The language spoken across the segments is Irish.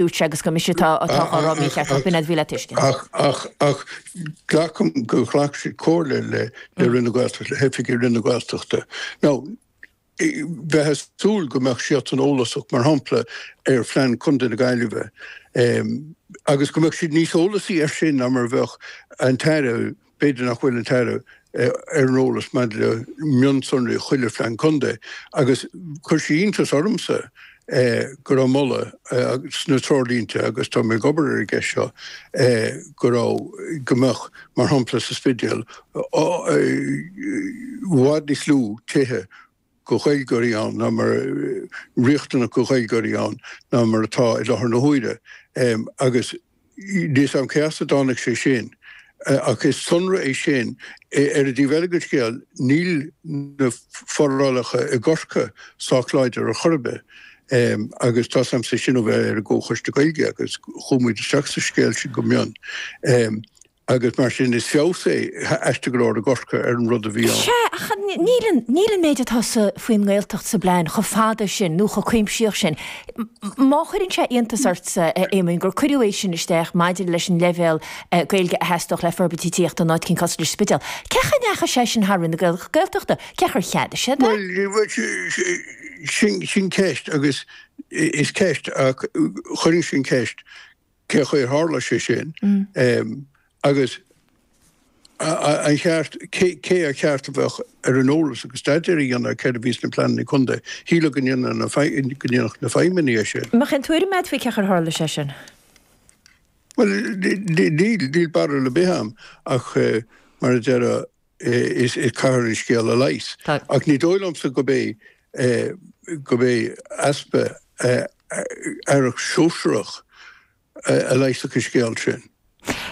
dúirt sé agus gur mise atá á rá mícheart, ach b'in a bhí le tuiscint. Ach glacaim gur ghlac siad comhairle le Roinn na Gaeltachta, le hoifigigh Roinn na Gaeltachta. Now, bheifeá ag súil go mbeadh siadsan eolasach, mar shampla, ar phlean Chontae na Gaillimhe, agus go mbeadh siad níos eolasaí air sin ná mar a bheadh an tAire, B'fhéidir nach bhfuil an tAire ar an eolas maidir le mionsonraí chuile phlean contae agus chuir sé iontas ormsa go raibh moladh sna treoirlínte, agus tá mé ag obair ar an gceist seo, go raibh, go mbeadh, mar shampla sa Spidéal, i bhfad níos lú tithe. de Ghaeilgeoirí ann ná mar riachtanach de Ghaeilgeoirí ann ná mar atá i láthair na huaire agus níl a fhios a'm cé as a dtáinig sé sin ach is sonra é sin. Ar an dtaobh eile den scéal níl na forálacha i gCorcaigh sách láidir ar chor ar bith agus tá's a'msa sin ó bheith ar an gComhchoiste Gaeilge agus chuaigh muid isteach sa scéal sin go mion. agus mar sin is feabhas é aisteach go leor i gCorcaigh ar an rud a bhí ann. Sea, ach níl an méid atá sa faoin nGaeltacht sa bplean chomh fada sin nó chomh cuimsitheach sin. Má chuireann sé iontas ortsa, a Éamoin, gur cuireadh é sin isteach maidir leis an leibhéal Gaeilge a theastódh le forbairt tithíochta in áit eicínt cosúil leis an Spidéal, cén chaoi a ndeachaigh sé sin thar Roinn na Gaeltachta? Cén chaoi ar cheadaigh siad é? Bhuel, sin ceist agus is ceist ach chuireann sin ceist. cén chaoi ar tharla sé sin agus an cheart, cé ar cheart a bheith ar an eolas agus staidéar a dhéanamh ar céard a bhí sna pleananna contae. Shílfeá go ndéanfadh na feidhmeannaigh é sin. An bhfuil aon tuairim agat faoi cén chaoi ar tharla sé sin? Bhuel, níl barúil ar bith agam ach, mar a deir Is caithfear an scéal a leigheas. Tá. Ach ní dóigh liomsa go mba go mba easpa aire shóisearach a leigheasfadh an scéal sin.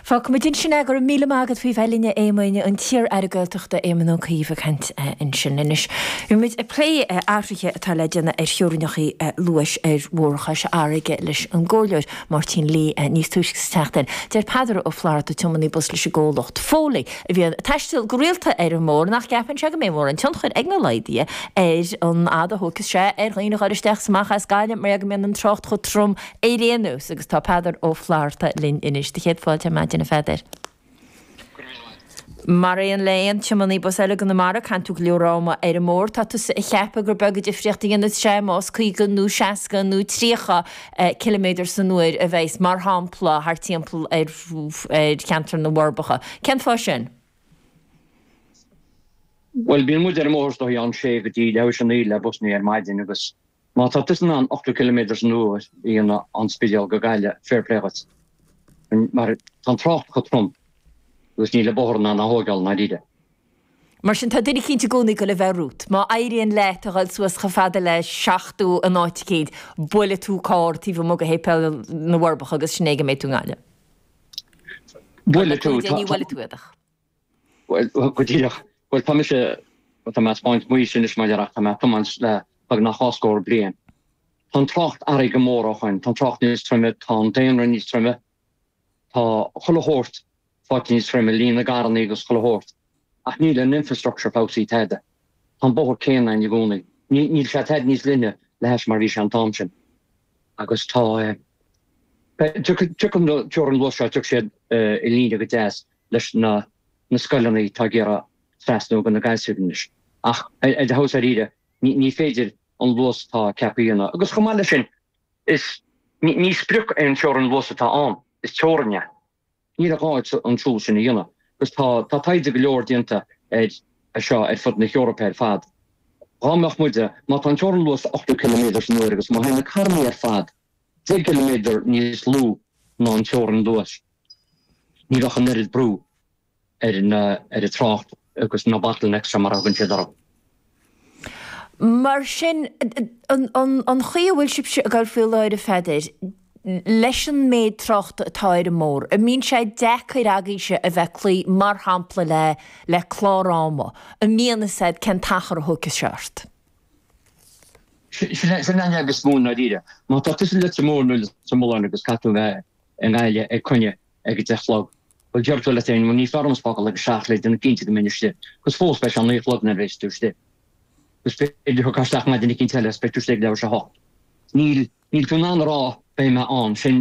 Fágfaidh muid ansin é. Go raibh míle maith agat faoi bheith linn, a Éamoin. An t-iar-aire Gaeltachta, Éamon Ó Cuív, ag caint ansin. Anois, bhí muid ag plé athruithe atá le déanamh ar theorainneacha luais ar Bhóthar Chois Fharraige leis an gComhairleoir Máirtín Lee níos túisce sa tseachtain. Deir Peadar Ó Flatharta, tiománaí bus leis an gcomhlacht Foley, a bhíonn ag taisteal go rialta ar an mbóthar, nach gceapann sé go mbeidh mórán tionchair ag na laghduithe ar an fhad a thógfas sé ar dhaoine a dhul isteach is amach as Gaillimh mar gheall go mbíonn an trácht chomh trom ar aon nós agus tá Peadar Ó Flatharta linn anois. Do chéad fáilte ar maidin a Pheadair. Mar aon le aon tiománaí bus eile i gConamara caitheann tú go leor ama ar an mbóthar. Tá tusa ag ceapadh gur beag an difríocht a dhéanfas sé más caoga nó seasca nó tríocha ciliméadar san uair a bheas, mar shampla, thart timpeall ar cheantar na bhForbacha. Cén fáth sin? Bhuel, bíonn muid ar an mbóthar is dóigh óna sé go dtí leathuair théis a naoi le busanna ar maidin agus má tá tusa in ann 80 ciliméadar san uair a dhéanamh ón Spidéal go Gaillimh, fair play dhuit. Mar tá an trácht chomh trom agus níl an bóthar in ann é a thógáil i ndáiríre. Mar sin, tá duine eicínt i gcónaí ag goil le bheith romhat. Má éiríonn leat a dhul suas chomh fada le seachtó in áit eicínt, buailfidh tú carr taobh amuigh de Shéipéal na bhForbacha agus sin é go mbeidh tú i nGaillimh. Buailfidh tú. Tá. Ní bhuailfidh tú iad ach. Bhuel, go díreach. Bhuel, tá mise, tá mé ag spáint m'aois anois a Mháirín ach tá mé ag tiomáint le beagnach dhá scór bliain. Tá an trácht ardaithe go mór ó shoin, tá an trácht níos troime, tá an daonra níos troime, tá chuile shórt fáil níos troime, líon na gcarrannaí agus chuile shórt. Ach níl an infrastructure feabhsaithe tada. Tá an bóthar céanna ann i gcónaí. Ní, níl sé tada níos leithne le hais mar bhí sé an t-am sin. Agus tá eh. Beh, tiocfaidh, tiocfaidh na, teorainn luas seo, tiocfaidh siad eh i líne go deas leis na, na scoileanna atá ag iarraidh trasnú go na gaelscoileanna anois. Ach eh, eh dáiríre, ní, ní féidir an luas atá ceaptha a dhéanamh. Agus chomh maith leis sin, is, ní, ní sprioc é an teorainn luas atá ann, is teorainn é. Ní gá dhuit an siúl sin a dhéanamh agus tá tá taighde go leor déanta ar ar seo ar fud na hEorpa ar fad. Dhá mbeadh muide, má tá an teorainn luas ochtó ciliméadar san uair agus má théann na carrannaí ar fad deich gciliméadar níos lú ná an teorainn luais, ní bheadh an oiread brú. ar na ar an trácht agus na bottlenecks seo mar a thugann siad orthu. Mar sin, an chaoi a bhfuil sibhse ag obair faoi láthair, a Pheadair, leis an méid tráchta atá ar an mbóthar, an mbíonn sé deacair agaibhse a bheith ag cloí, mar shampla, le le clár ama? An mbíonn, is ea, cén t-achar a thógfadh sé ort? Sin é an jab is mó, i ndáiríre. Má tá tusa le tiomáint nó le tiomáint agus caithfidh tú a bheith i nGaillimh ag coinne ag a deich a chlog. Bhuel, deir tú leat féin, bhuel, is fearr dhomsa fágáil ag a seacht le déanamh cinnte go mbeidh mé istigh, agus fós beidh sé a naoi a chlog nuair a bheas tú istigh. Agus b'fhéidir go dtiocfá isteach maidin eicínt eile agus beidh tú istigh ag leathuair théis a hocht. Níl, níl tú in ann a rá beidh mé ann, sin.